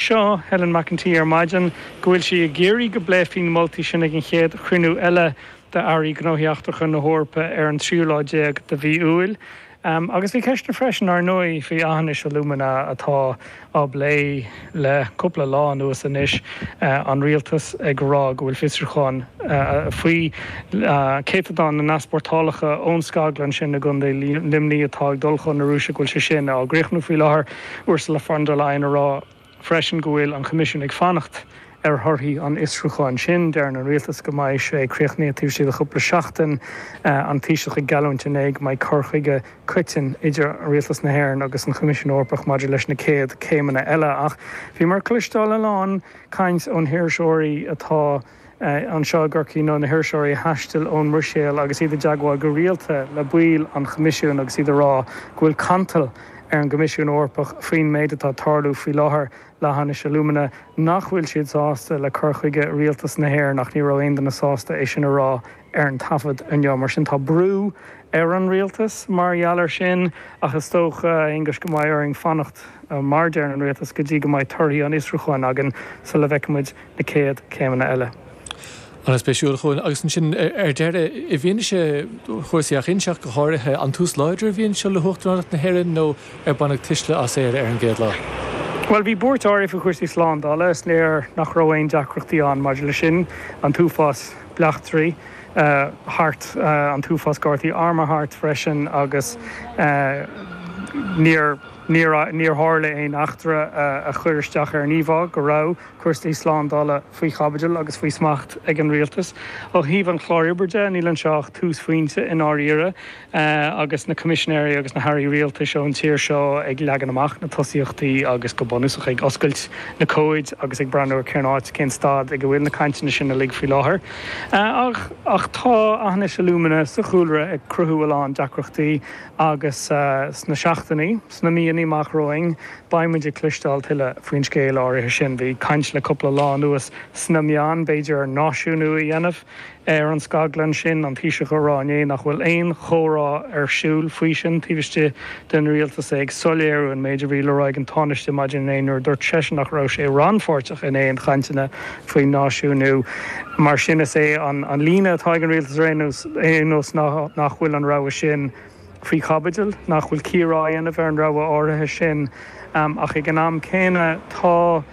Seo Helen McEntee ar maidin go bhfuil sí ag iarraidh go bpléifí na moltaí sin ag an chéad chruinniú eile d'Airí Gnóthaí Eachtracha na hEorpa ar an tríú lá déag de mhí Iúil. Agus bhí ceisteanna freisin, ár ndóigh, faoi Aughinish Alumina atá á bplé le cúpla lá anuas anois, an rialtas ag rá go bhfuil fiosrúchán faoi chéatadán na n-easpórtálacha ón scaglann sin i gContae Luimnigh atá ag dul chun na Rúise, go bhfuil sé sin á chríochnú faoi láthair. Ursula von der Leyen ag rá freisin go bhfuil an Coimisiún ag fanacht ar thorthaí an fhiosrúcháin sin. Deireann an Rialtas go mbeidh sé críochnaithe taobh istigh de chúpla seachtain. An Taoiseach ag geallúint inné go mbeidh cur chuige coiteann idir Rialtas na hÉireann agus an Choimisiún Eorpach maidir leis na chéad chéimeanna eile. Ach bhíomar ag cloisteáil a lán caint ó na hiriseoirí atá. anseo i gCorcaigh ó na hiriseoirí a thaistil ón mBruiséil agus iad i dteagmháil go rialta le baill an Choimisiúin agus iad ag rá go bhfuil cantal ar an gCoimisiún Eorpach faoin méid atá ag tarlú faoi láthair le hAughinish Alumina, nach bhfuil siad sásta le cur chuige Rialtas na hÉireann ach ní raibh aon duine sásta é sin a rá. ar an taifead inniu. Mar sin, tá brú ar an rialtas mar gheall air sin ach is dócha, a Aonghuis, go mbeidh orainn fanacht, mar a deireann an rialtas, go dtí go mbeidh torthaí an fhiosrúcháin againn sula bhfeicfidh muid na chéad chéimeanna eile. An-spéisiúil a Chóilin. Agus ansin ar deireadh, i bhfianaise chúrsaí Aughinish go háirithe, an tús láidir a bhí anseo le hUachtaránacht na hÉireann nó ar baineadh tuisle as Éire ar an gcéad lá? Bhuel, bhí buairt áirithe faoi chúrsaí slándála, is léir nach raibh aon deacrachtaí ann maidir leis sin, an t-uafás. bleachtairí thart an t-uafás gardaí armtha thart freisin agus níor níor níor tharla aon eachtra a chuir isteach ar an íomhá go raibh cúrsaí slándála faoi chaibidil agus faoi smacht ag an rialtas. Ó thaobh an chláir oibre de níl anseo ach túsphointe i ndáiríre. agus na Coimisinéirí agus na hAirí Rialtais ón tír seo ag leagan amach na tosaíochtaí agus go bunúsach ag oscailt na comhaid agus ag breathnú ar cén áit, cén staid ag a bhfuil na cainteanna sin uilig faoi láthair. Ach tá Aughinish Alumina sa chúlra ag cruthú a lán deacrachtaí agus sna seachtainí, sna míonna amach romhainn beidh muid ag cloisteáil tuilleadh faoin scéal áirithe sin. Bhí caint le cúpla lá anuas sna meáin b'fhéidir náisiúnú a dhéanamh. ar an scaglann sin, an Taoiseach ag rá inné nach bhfuil aon chomhrá ar siúl faoi sin taobh istigh den rialtas, é ag soiléiriú an méid a bhí le rá ag an Tánaiste maidin inné nuair a dúirt seisean nach raibh sé rannpháirteach in aon chainteanna faoin náisiúnú. Mar sin is é an líne atá ag an rialtas ar aon nós ná nach bhfuil an rogha sin faoi chaibidil, nach bhfuil cíoradh á dhéanamh ar an rogha áirithe sin ach ag an am céanna tá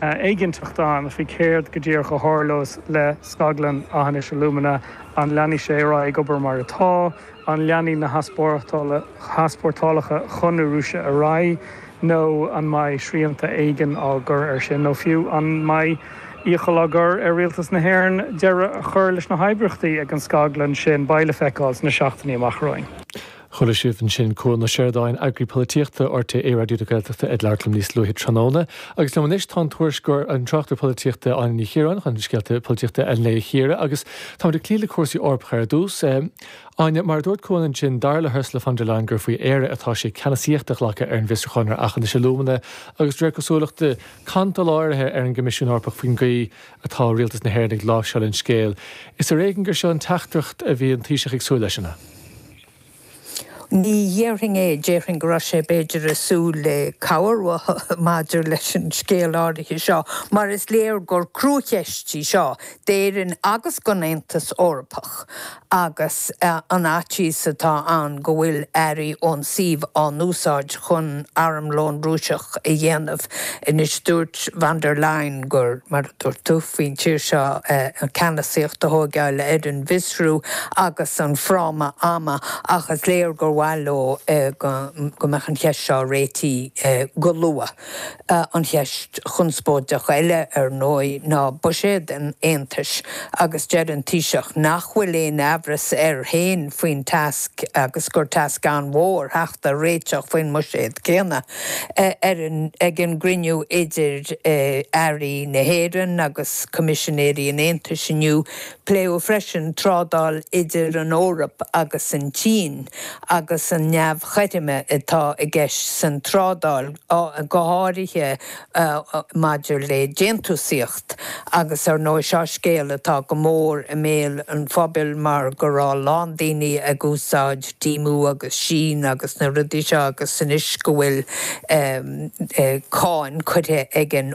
éiginnteacht ann faoi céard go díreach a tharlós le scaglann Eachinis Alumina, an leanfaidh sé ar aghaidh ag obair mar atá, an leanfaidh na heaspórtálacha chun na Rúise ar aghaidh nó an mbeidh srianta éigin á gcur air sin nó fiú an mbeidh iachall á chur ar rialtas na hÉireann deireadh a chur leis na hoibríochtaí ag an scaglann sin, beidh le feiceáil sna seachtainí amach romhainn. Chuala sibh ansin Cuan Ó Seireadáin, Eagraí Polaitíochta RTÉ Raidió na Gaeltachta ag labhairt liom níos luaithe tráthnóna. Agus liom anois tá an tuairisceoir, an tráchtaire polaitíochta Áine Ní Chiaráin chun scéalta polaitíochta an lae a chíoradh agus táimid ag cloí le cúrsaí Eorpacha ar dtús. Áine, mar a dúirt Cuan ansin, dar le hUrsula von der Leyen gur faoi Éire atá sé ceannasaíocht a ghlacadh ar an bhfiosrúchán ar Eachinis Alumina agus de réir cosúlachta cantal áirithe ar an gCoimisiún Eorpach faoin gcaoi atá rialtas na hÉireann ag láimhseáil an scéil. Is ar éigean gur seo an teachtaireacht a bhí an Taoiseach ag súil leis, an ea? Ní dhéarfainn é, déarfainn go raibh sé b'fhéidir ag súil le cabhair uathu maidir leis an scéal áirithe seo, mar is léir gur cruacheist í seo d'Éirinn agus don Aontas Eorpach agus an faitíos atá ann go bhfuil earraí ón suíomh á n-úsáid chun armlón Rúiseach a dhéanamh anois. Dúirt von der Leyen gur. Dúirt gur faoin tír seo an ceannasaíocht a thóigeáil ar an bhfiosrú agus an fráma ama ach is léir gur mhaith leo go mbeadh an cheist seo réitithe go luath. An cheist chonspóideach eile ar ndóigh ná buiséad an Aontais agus deir an Taoiseach nach bhfuil aon aimhreas air féin faoin tasc agus gur tasc an-mhór theacht ar réiteach faoin mbuiséad céanna. ag an gcruinniú idir airí na hÉireann agus Coimisinéirí an Aontais inniu, pléadh freisin trádáil idir an Eoraip agus an tSín agus an neamhchothroime atá i gceist san trádáil, go háirithe maidir le déantúsaíocht agus ar ndóigh seo scéal atá go mór i mbéal an phobail mar go raibh a lán daoine ag úsáid Temu agus Shein agus na rudaí seo agus anois go bhfuil cáin curtha ag an